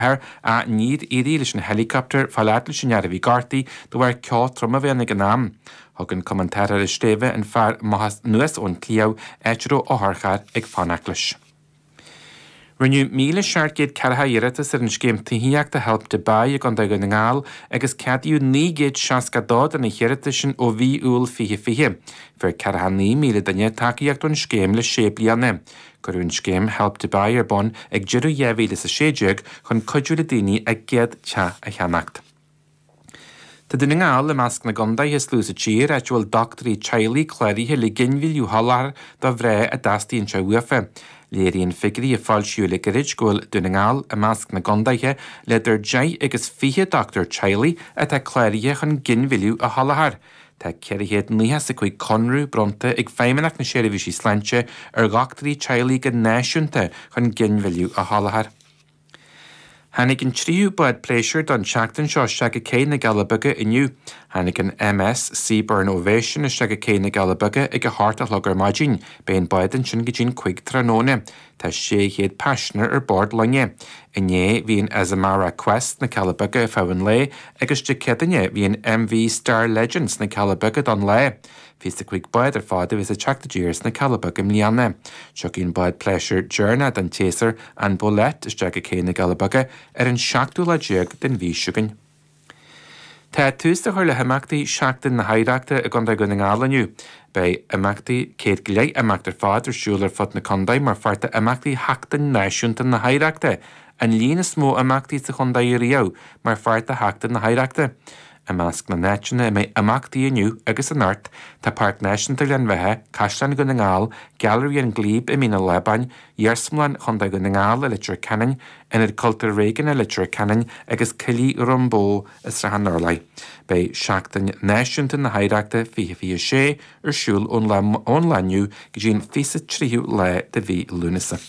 Ach níor éirigh leis an helicopter, fáil fhad leis an fhear a bhí gortaithe, de bharr ceo trom a bhí ann ag an am. Thug an Cumann Tarrthála Sléibhe an fear maitheas anuas ón tsliabh, áit a raibh otharcharr ag fanacht leis. Rinneadh 1,740 iarratas ar an scéim tithíochta Help to Buy i gContae Dhún na nGall agus ceadaíodh 962 de na hiarratais sin ó mhí Iúil 2020. Fuair 49,000 duine tacaíocht ón scéim le sé bliana. Cuireadh an scéim Help to Buy ar bun ag deireadh 2016 chun cuidiú le daoine a gcéad teach a cheannacht. Tá Dún na nGall i measc na gcontaetha is lú sa tír áit a bhfuil dochtúirí teaghlaigh cláraithe le ginmhilleadh a sholáthar do mhná a dteastaíonn sé uafa. Léiríonn figirí a foilsíodh le gairid go bhfuil Dún na nGall i measc na gcontaetha le idir 10 agus 20 dochtúir teaghlaigh atá cláraithe chun ginmhilleadh a sholáthar Tá 495 conradh bronnta ag Feidhmeannacht na Seirbhísí Sláinte ar dhochtúirí teaghlaigh go náisiúnta chun ginmhilleadh a sholáthar. Tháinig an tríú bád pléisiúir don tseachtain seo isteach go Cé na gCealla Beaga inniu. Tháinig an MS Seabourn Ovation isteach go Cé na gCealla Beaga ag a hocht a chlog ar maidin. Beidh an bád ansin go dtí an 5 tráthnóna. Tá 600 paisinéir ar bord loinge. Inné bhí an Azamara Quest sna Cealla Beaga ar feadh an lae agus Dé Céadaoine bhí an MV Star Legend sna Cealla Beaga don lá. 25 bád ar fad a bheas ag teacht i dtír sna Cealla Beaga i mbliana. Tiocfaidh an bád pléisiúir deireanach den tséasúr an Bolette isteach go Cé na gCealla Beaga ar an seachtú lá déag den mhí seo againn. Tá tús le cur le himeachtaí Sheachtain na hOidhreachta i gContae Dhún na nGall inniu. Beidh imeachtaí céad go leith imeacht ar fad ar siúl ar fud na contae mar pháirt d'imeachtaí Sheachtain Náisiúnta na hOidhreachta, an líon is mó imeachtaí sa chontae riamh mar pháirt de Sheachtain na hOidhreachta. I measc na n-áiteanna a mbeidh imeachtaí inniu agus anocht, tá Páirc Náisiúnta Ghleann Bheatha, Caisleán Dhún na nGall, Gailearaí an Glebe i Mín an Lábáin, Iarsmalann Chontae Dhún na nGall i Leitir Ceanainn, Ionad Cultúir Réigiúnach i Leitir Ceanainn agus Coillidh Dhroim Bó i Srath an Urláir. Beidh Seachtain Náisiúnta na hOidhreachta 2026 ar siúl ón lá inniu go dtí an 23ú lá de mhí Lúnasa.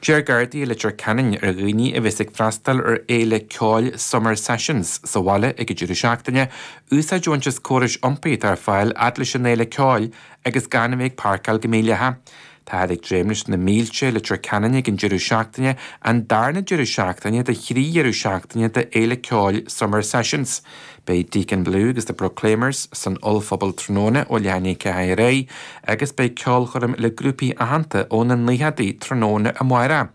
D'iarr Gardaí Leitir Ceanainn ar dhaoine a bheas ag freastal ar fhéile ceoil Summer Sessions sa bhaile ag an deireadh seachtaine, úsáid a bhaint as córais iompaigh atá ar fáil fhad leis an fhéile ceoil agus gan a bheith ag páirceáil go mídhleathach. Táthar ag dréim leis na mílte i Leitir Ceanainn ag an deireadh seachtaine, an darna deireadh seachtaine de thrí dheireadh seachtaine de fhéile ceoil Summer Sessions. Beidh Deacon Blue agus The Proclaimers san ollphuball tráthnóna ó leath i ndiaidh ceathair ar aghaidh agus beidh ceolchoirm le grúpaí aitheanta ó na naochadaí tráthnóna amárach.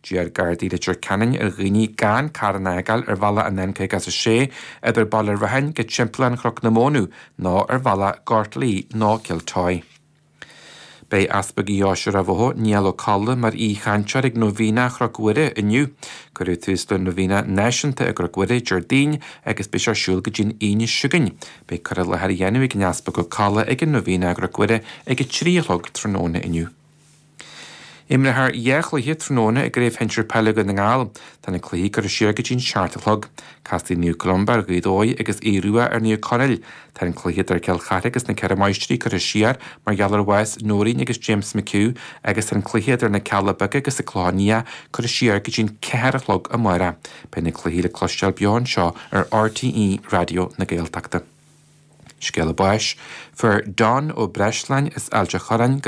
D'iarr Gardaí Leitir Ceanainn ar dhaoine gan carr a fhágáil ar bhealach an N56 idir Baile Rathain go Timpeallán Chnoc na Móna ná ar bhealach Gortlee ná Kiltoy. Beidh Easpag Dheoise Ráth Bhoth, Niall Ó Colla, mar aoichainteoir ag Nóibhéine Chnoc Mhuire inniu. Cuireadh tús le Nóibhéine Náisiúnta i gCnoc Mhuire Déardaoin agus beidh sé ar siúl go dtí an Aoine seo chugainn. Beidh cur i láthair á dhéanamh ag an Easpag Ó Colla ag an Nóibhéine i gCnoc Mhuire ag a trí a chlog tráthnóna inniu. Imreofar dhá chluiche tráthnóna i gCraobh Shinsir Peile Dhún na nGall. Tá na cluichí curtha siar go dtí an seacht a chlog. Casfaidh Naomh Columba ar Ghaoth Dobhair agus Aodh Ruadh ar Naomh Conaill. Tá an cluiche idir Cill Charthaigh agus na Ceithre Máistrí curtha siar mar gheall ar bhás Noreen agus James McHugh agus tá an cluiche idir na Cealla Beaga agus an Clochán Liath curtha siar go dtí an ceathair a chlog amárach. Beidh na cluichí le cloisteáil beo anseo ar RTÉ Raidió na Gaeltachta. Scéala báis. Fuair Don Ó Breisleáin as Ailt a' Chorráin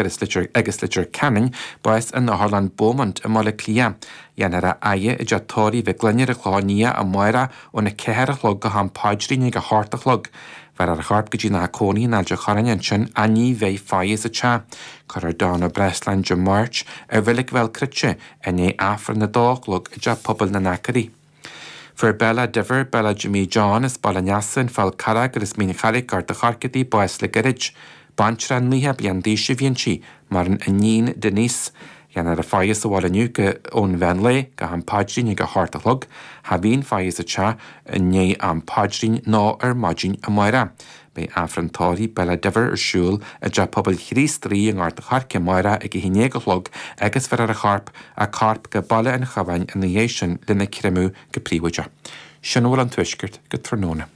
agus Leitir Ceanainn bás in Otharlann Beaumont i mBaile Átha Cliath. Déanfar a fhaire i dteach Tórraimh Mhic Fhloinn ar an Chlochán Liath amárach ón a ceathair a chlog go ham paidrín ag a hocht a chlog. Bhéarfar a chorp go dtí a theach cónaí in Ailt a' Chorráin ansin ach ní bheidh faire sa teach. Cuirfear Don Ó Breisleáin Dé Máirt i reilig Bhéal Cruite i ndiaidh Aifreann a dó a chlog i dteach pobail na nAcraí. Fuair Bella Diver, Bella Jimí John as Baile an Easa, an Fál Carrach agus Mín Charraig, Gort an Choirce, bás le gairid. Baintreach nócha bliain d'aois a bhí inti, maireann a níon Denise. Déanfar a faire sa bhaile inniu go ón mheán lae, go ham paidrín ag a hocht a chlog. Cha bhíonn faire sa teach i ndiaidh am paidrín nó ar maidin amárach. Beidh Aifreann Tórraimh Bella Diver ar siúl i dTeach Pobail Chríost Rí i nGort an Choirce amárach ag 11 a chlog agus bhéarfar a corp, a corp go Baile an Chabháin ina dhiaidh sin lena creimeadh go príobháideach. Sin a bhfuil ón Tuaisceart go tráthnóna.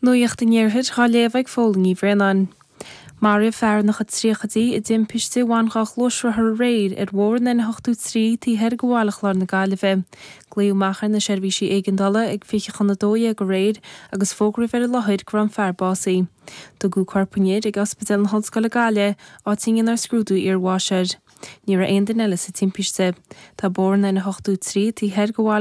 Nuacht an Iarthair dhá léamh ag Póilín Ní Bhraonáin. Maraíodh fear ina chuid tríochaidí i dtimpiste a bhain dhá ghluaisrothar aréir ar bhóthar an N83 taobh thiar de Bhaile Chláir na Gaillimhe, Glaodh amach ar na seirbhísí éigeandála ag fiche chun a dó dhéag aréir agus fógraíodh ar an láthair go raibh an fear básaithe. Tugadh corp an fhir ag Ospidéal na hOllscoile Gaillimh, áit a ndéanfar scrúdú iarbháis air. Ní raibh aon duine eile sa timpiste. Tá bóthar an N83 taobh thiar de Bhaile.